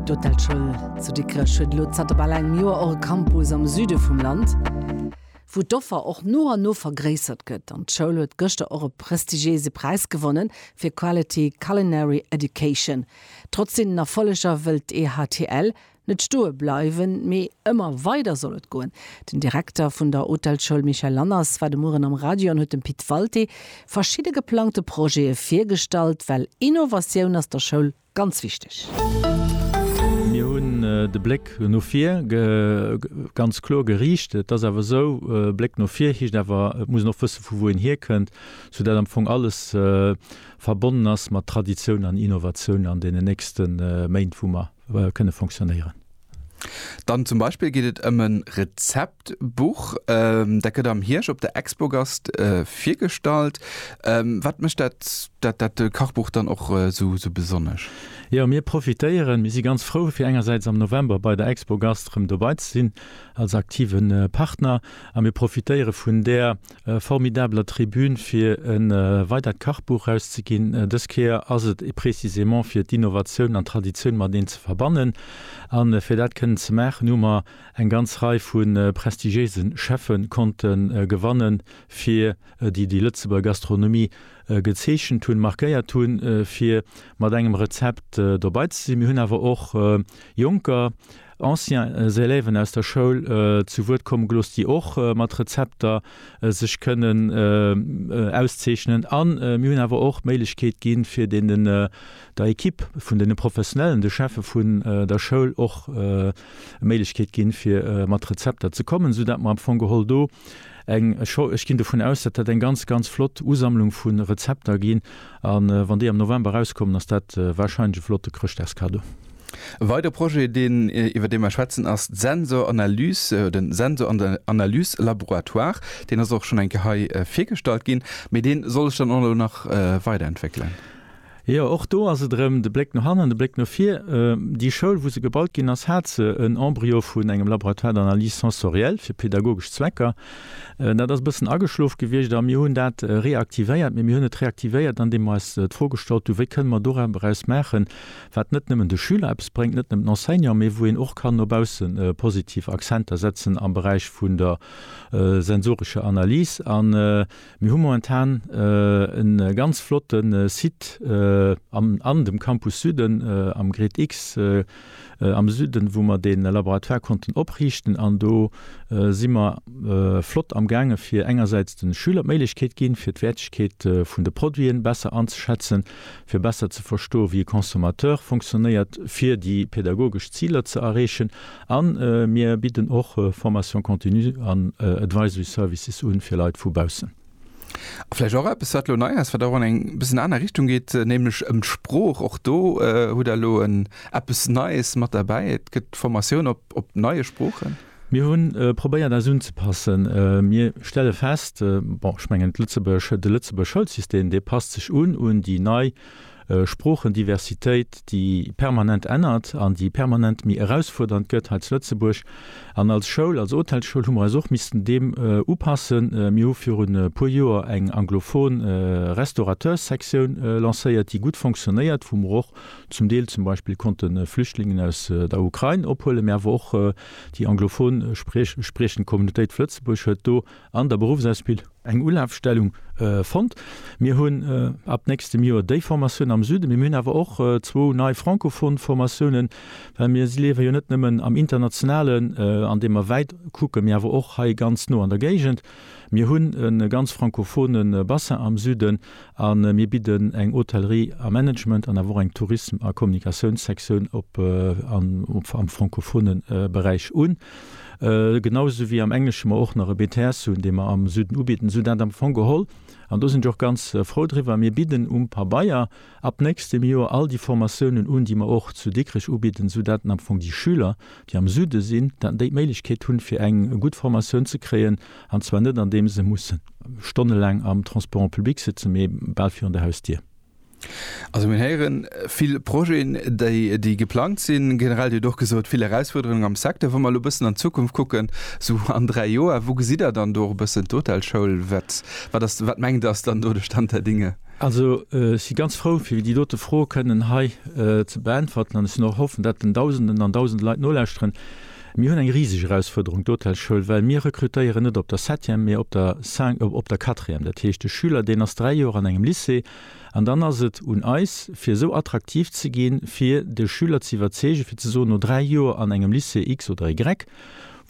D'Hotelschoul zu Dikrech huet elo zanter bal engem Joer och e Campus am Süde vum Land, wou d'Offer och no an no vergréissert gëtt. An d'Schoul huet gëschter och e prestigiéise Präis gewonnen fir Quality Culinary Education. Trotz deenen Erfolleger wëllt d'EHTL net stoe bleiwen, mee ëmmer weider soll et goen. Den Direkter vun der Hotelschoul Michel Lanners war de Mueren am Radio an huet dem Pit Walté verschidde geplangte Projete virgestallt, well Innovatioun ass der Schoul ganz wichteg. Mir hunn de Bléck no vir ganz kloer geriicht. Et ass awer esou, Bléck no vir heescht awer, et muss een och wësse vu wou een hierkënnt, soudatt am Fong alles verbonnen ass mat Traditioun an Innovatioun an deenen nächste Méint, wou mer kënne fonctionnéieren. Dann zum Beispill geet et ëm e Rezeptbuch, dat gëtt am Hierscht op der Expogast virgestallt. Wat mécht dat dat Kachbuch dann och esou besonnesch? Jo, mir profitéieren, mir si ganz frou fir engersäits am November bei der Expogast erëm dobei ze sinn als aktive Partner a mir profitéiere vun där E formidabeler Tribün fir e weidert Kachbuch erauszeginn. Dës Kéier ass et précisément fir d'Innovatioun an d'Traditioun mateneen ze verbannen. An fir dat kënnen ze maachen hu mer eng ganz Rei vu prestigiéise Cheffe konnte gewannen fir déi déi Lëtzebuerger Gastronomie gezeechent hunn, markéiert hunn fir mat engem Rezept dobei ze sinn. Mir hunn awer och Jonker Anciens Élèven aus der Schoul zu Wuert komme gelooss, déi och mat Rezepter sech kënnen auszeechnen. A mir hunn awer och d'Méiglechkeet gi fir deenen, der Ekipp vun deene Professionellen, de Cheffe vun der Schoul och d'Méiglechkeet gi fir mat Rezepter ze kommen, esou datt mer am Fong geholl do, eng, ech ginn dovun aus, dat wäert eng ganz, ganz flott Usammlung vu Rezepter ginn. A wann déi am November erauskommen, ass dat warscheinlech e flotte Chrëschtdagskado. E weidere Projet, deen, iwwer dee mer schwätzen, ass d'Sensor-Analyse, de Sensor-Analyse-Laboratoire. Deen ass och schonn eng Kéier hei virgestallt ginn, mee dee soll sech dann och elo nach weiderentwéckelen. Jo, och do ass et erëm de Bléck no hannen, de Bléck no vir. Déi Schoul, wou se gebaut ginn ass, hat se en Embryo vun engem Laboratoire d'analyse sensorielle fir pedagogesch Zwecker. Dat ass e bëssen ageschlof gewiescht a mir hunn dat reaktivéiert. Mee mir hunn et reaktivéiert, andeem mer eis d'Fro gestallt hunn, wéi kënne mer do epperaus maachen, wat net nëmmen de Schüler eppes bréngt, net nëmmen den Enseignanten, mee wou een och kann no bausse positiv Accenter setzen am Beräich vun der sensorescher Analys. Mir hu momentan e ganz flotte Site an dem Campus Süden am GRIDX am Süden, wou mer dee Laboratoire konnten opriichten. An do si mer flott amgaange fir engersäits de Schüler d'Méiglechkeet ginn, fir d'Wäertegkeet vun de Produiten besser anzeschätzen, fir besser ze verstoen, wéi e Consommateur fonctionnéiert, fir déi pädagogesch Ziler ze erreechen A mir bidden och Formation continue an Advisory Services un fir Leit vu baussen. A vläicht och eppes, wat elo nei ass, wat och an eng bëssen aner Richtung geet, nämlech ëm d'Sprooch. Och do hutt Der elo en eppes Neies mat derbäi, et gëtt Formatioun op neie Sproochen. Mir hu probéiert eis unzepassen. Mir stelle fest, bon, ech mengen d'Lëtzebuerg, de Lëtzebuerg Schoulsystem, dee passt sech un un déi nei Sproochendiversitéit, déi permanent ännert an déi permanent méi erausfuerdernd gëtt hei zu Lëtzebuerg. An als Schoul, als Hotelsschoul hu mer eis och missten deem upassen. Mir hu virun e puer Joer eng anglofon Restaurateurssektioun lancéiert, déi gutt fonctionnéiert, wou mer och zum Deel zum Beispill konnte Flüchtlingen aus der Ukrain ophuelen, mä awer och déi anglofon spriechend Communautéit vu Lëtzebuerg huet do an der Beruffsausbildung eng Ulafstellung fonnt. Mir hunn ab nächstem Joer déi Formatioun am Süden, mee mir hunn awer och zwou nei francophon Formatiounen, well mir liewe jo net nëmmen am Internationalen, an deem mer wäit kucken, mee awer och hei ganz no an der Géigend. Mir hunn e ganz francophone Bassin am Süden a mir bidden eng Hotellerie a Management an awer och eng Tourisme a Kommunikatiounssektioun op am francophone Beräich un. Genau esou wéi am Englesche mer och nach e BTS hunn, dee mer am Süden ubidden, esou dat am Fong geholl, an do sinn ech och ganz frou driwwer, mir bidden um Pabeier ab nächstem Joer all déi Formatiounen un, déi mer och zu Dikrech ubidden, esou dat am Fong déi Schüler, déi am Süde sinn, dat déi d'Méiglechkeet hunn, fir eng gutt Formatioun ze kréien, an zwar net andeems se musse stonnelaang am Transport en public sëtzen, mee bal virun der Hausdier. Also mir héieren vill Projeten, déi déi geplangt sinn. Generell, Dir hutt och gesot, vill Erausfuerderungen am Secteur. Wa mer elo e bëssen an d'Zukunft kucken, esou an dräi Joer, wou gesitt Der dann do och e bëssen d'Hotelschoul? Wat, wat ass, wat mengt Der ass dann do de Stand der Dinge? Also ech si ganz frou fir déi dote Fro kënnen hei ze beäntwerten an ech sinn och hoffen, dat den Dausenden an Dausende Leit nolauschteren. Mir hunn eng riseg Erausfuerderung, d'Hotelschoul, well mir rekrutéieren net op der Septième, mee op der Cin, op der Quatrième. Dat heescht, de Schüler, deen ass dräi Joer an engem Lycée. An dann ass et un eis, fir esou attraktiv ze ginn, fir de Schüler z'iwwerzeegen, fir ze soen, no dräi Joer an engem Lycée X oder Y,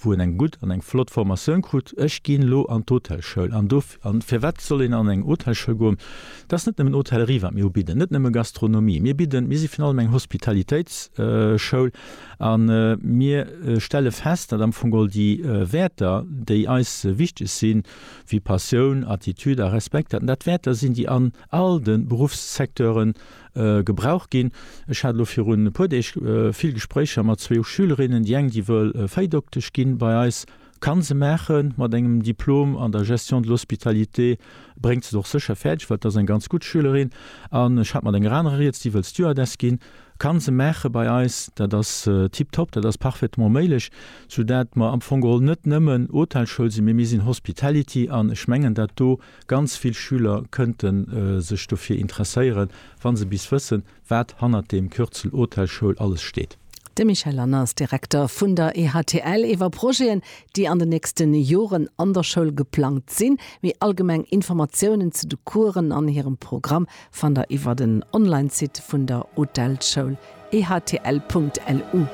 wou en eng gutt an eng flott Formatioun krut, Ech ginn elo an d'Hotelschoul. An do, a fir wat soll een an eng Hotelschoul goen? Dat ass net nëmmen Hotellerie, wat mir ubidden, net nëmme Gastronomie. Mir bidden, mir si virun allem eng Hospitalitéitsschoul. A mir stelle fest, datt am Fong all déi Wäerter, déi eis wichteg sinn, wéi Passioun, Attitude a Respekt, datt dat Wäerter sinn, déi an all de Beruffssecteuren gebraucht ginn. Ech hat elo virun e puer Deeg vill Gespréicher mat zwou Schülerinnen, déi eng, déi wëll Véidoktesch gi bei eis, Kann se maachen, mat engem Diplom an der Gestion de l'hospitalité bréngt se et och sécher fäerdeg, well et ass eng ganz gutt Schülerin. An ech hat mat enger anerer rieds, déi wëll Stewardess ginn. Kann se maache bei eis, dat ass tiptop, dat ass parfaitement méiglech, soudatt mer am Fong geholl net nëmmen Hotelschoul sinn, mee mir sinn Hospitality. An ech mengen, datt do ganz vill Schüler kënnte sech dofir interesséieren, wa se bis wëssen, Wat hannert dem Kürzel Hotelschoul alles steet? De Michel Lanners, Direkter vun der EHTL, iwwer Projeten, déi an den nächste Joren an der Schoul geplangt sinn. Méi allgemeng Informatiounen zu de Coursen an hirem Programm fannt der iwwer den Online-Site vun der Hotelschoul, ehtl.lu.